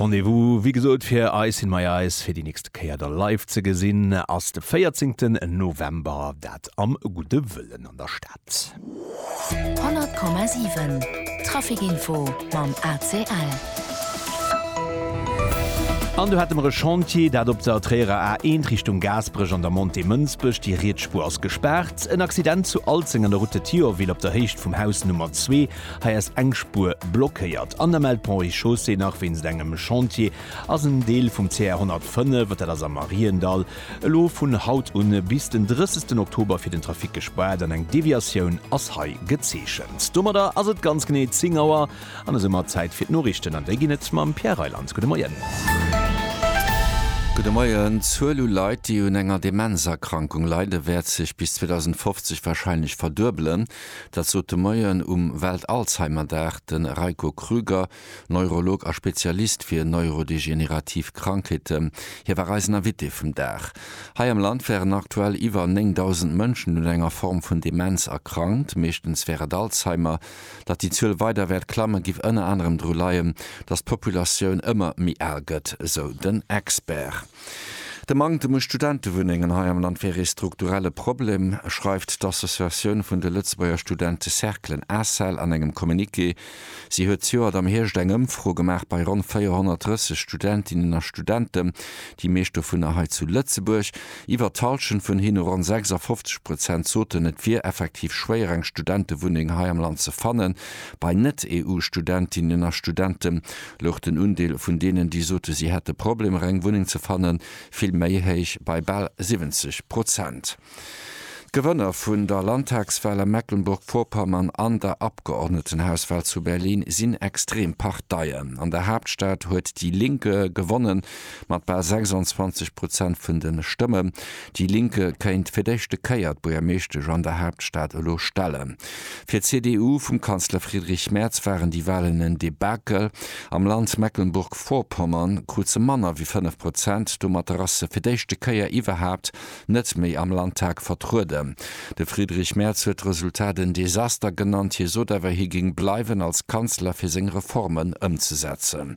Rendez-vous wéi gesot fir Ice in my eyes fir déi nächste Kéier da live ze gesinn ass de 14 November, dat am Gudde Wëllen an der Stad. 100,7 Traficinfo mam ACL. An do hate mer e Chantier, dat op der Tréierer A1 Richtung Gaasperech an der Montée Mënsbech. Déi riets Spuer ass gespaart. En Accident zu Alzeng an der Route de Thionville op der Héicht vum Haus Nummer 2. Hei ass eng Spuer blockéiert an der Melt Pont et Chaussée nach wéinst engem Chantier. Ass en Deel vum CR 105, dat ass am Mariendall, elo vun haut un bis den 30 Oktober fir den Trafic gespaart an eng Deviatioun ass hei gezeechent. Domadder ass et ganz genee 10 Auer an esou mat Zäit fir d'Noriichten an déi ginn et mam Pierre Reyland. Gudde Moien. Gudde Moien. D'Zuel u Leit, déi un enger Demenzerkrankung leiden, wäert sech bis 2050 warscheinlech verduebelen. Dat sot de Moien um Welt-Alzheimer-Dag de Reiko Krüger, Neurolog a Spezialist fir neurodegenerativ Krankheeten. Hie war eisen Invité vum Dag. Hei am Land wären aktuell iwwer 9.000 Mënschen un enger Form vun Demenz erkrankt, meeschtens wär et Alzheimer. Datt déi Zuel weider wäert klammen, giff ënner anerem dru leien, datt d'Populatioun ëmmer méi al gëtt, esou den Expert. De Manktem u Studentewunnengen hei am Land wär ee strukturelle Problem, schreift d'Associatioun vun de Lëtzebuerger Studentecerclen, ACEL, an engem Communiqué. Si huet zejoert am Hierscht eng Ëmfro gemaach bei ronn 430 Studentinnen a Studenten, déi meescht dovunner hei zu Lëtzebuerg. Iwwer d'Hallschent vun hinne, ronn 56 Prozent, soten, et wier effektiv schwéier, eng Studentewunneng hei am Land ze fannen. Bei Net-EU-Studentinnen a Studenten louch den Undeel vun deenen, déi sote si hätte Problemer eng Wunneng ze fannen, vill méi héich, bei bal 70 Prozent. D'Gewënner vun der Landtagswal a Mecklenburg-Vorpommern an der Abgeordnetenhauswal zu Berlin sinn extrem Parteien. An der Haaptstad huet déi Linke gewonnen, mat bal 26 Prozent vun de Stëmmen. Déi Linke kéint fir d'éischte Kéier d'Buergermeeschtesch an der Haaptstad elo stellen. Fir d'CDU vum Kanzler Friedrich Merz waren déi Walen en Debakel. Am Land Mecklenburg-Vorpommern krut se manner wéi 5 Prozent. Domatter ass se fir d'éischte Kéier iwwerhaapt net méi am Landtag vertrueden. De Friedrich Merz huet d'Resultat en Desaster genannt. Hie sot awer, hie géing bleiwen als Kanzler fir seng Reformen ëmzesetzen.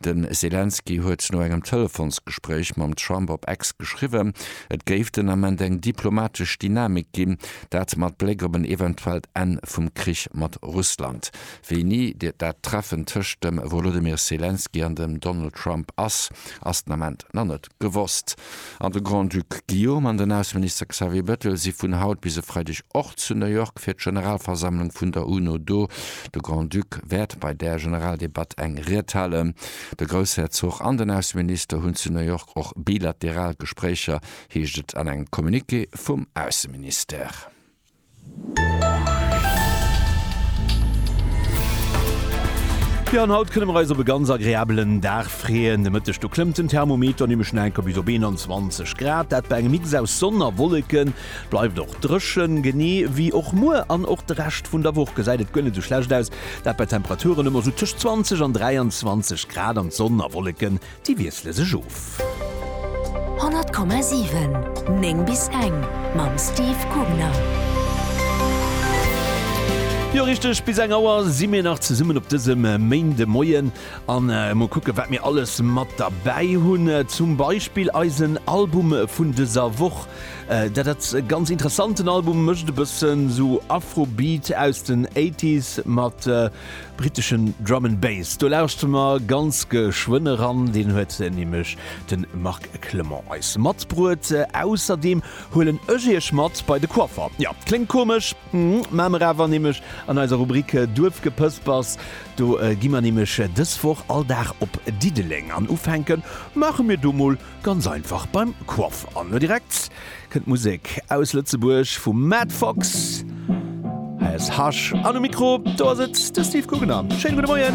De Selenskyj huet no engem Telefonsgespréich mam Trump op X geschriwwen, et géif den Ament eng diplomatesch Dynamik ginn, dat mat Bléck op en eventuellt Enn vum Krich mat Russland. Wéi ni dat Treffen tëscht dem Wolodymyr Selenskyj an dem Donald Trump ass, ass den Ament nach net. Gewosst. An de Grand-Duc Guillaume an den Ausseminister Xavier Bettel si vun haut bis e Freideg och zu New York fir d'Generalversammlung vun der UNO do. De Grand-Duc wäert bei där Generaldebatt eng Ried halen. De Groussherzog an den Ausseminister hunn zu New York och bilateral Gespréicher, heescht et an engem Communiqué vum Ausseministère. Jo, an haut kënne mer eis op e ganz agreabelen Dag freeën. De Mëtteg do klëmmt den Thermometer nämlech no enker bis op 21 Grad, dat bei engem Mix aus Sonn a Wolleken. Et bleift och dréchen, genee wéi och muer an och de Rescht vun der Woch gesäit et guer net esou schlecht aus, dat bei Temperaturen ëmmer esou tëscht 20 an 23 Grad an d'Sonn a Wolleke Déi wiessle sech of. 100,7, 9 bis eng mam Steve Kugner. Jo richteg, bis eng Auer si mir nach zesummen op dësem Méindemoien a mol kucke wat mir alles mat derbäi hunn. Zum Beispill eisen Album vun dëser Woch. Dat ass e ganz interessanten Album, mécht e bëssen esou Afrobeat aus den Eighties mat. Britteschen Drum and Bass, do lauschte mer ganz geschwënn eran, deen huet nämlech de Marc Clement eis matbruet. Ausserdeem huelen ech iech mat bei de Coiffer. Jo, kléngt komesch, mä mer awer nämlech an eiser Rubrik Duerfgepëspers, do gi mer nämlech dës Woch all Dag op Diddeleng an ufänke maache mir do mol Ganz einfach beim Coiffer. An elo direkt kënnt Musek aus Lëtzebuerg vum Matt Fox. Hei ass Hush an um Mikro, do ass et de Steve Guggenheim. Schéine gudde Moien!